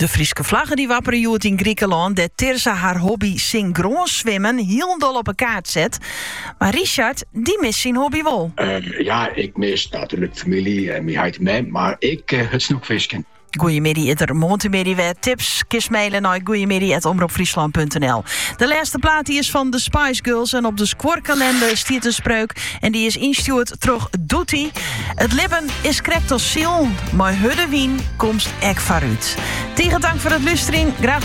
De Fryske flagge dy't wappere hjoed yn Grikelân, dêr't Tirza har hobby syngroan swimmen hielendal op 'e kaart set. Mar Richard, dy mist syn hobby wol. Ja, ik mis natuerlik famylje en myn heit en mem, mar ek it snoekfisken. Goeiemiddei is der moarntemiddei wer. Tips kinst maile nei goeiemiddei@omropfryslan.nl. De lêste plaat die is fan de Spice Girls en op de skuorkalinder stiet in spreuk en die is ynstjoerd troch Doetie. It libben is krekt as silen, mei hurde wyn komst ek foarút. Tige tank foar it luisteren. Graach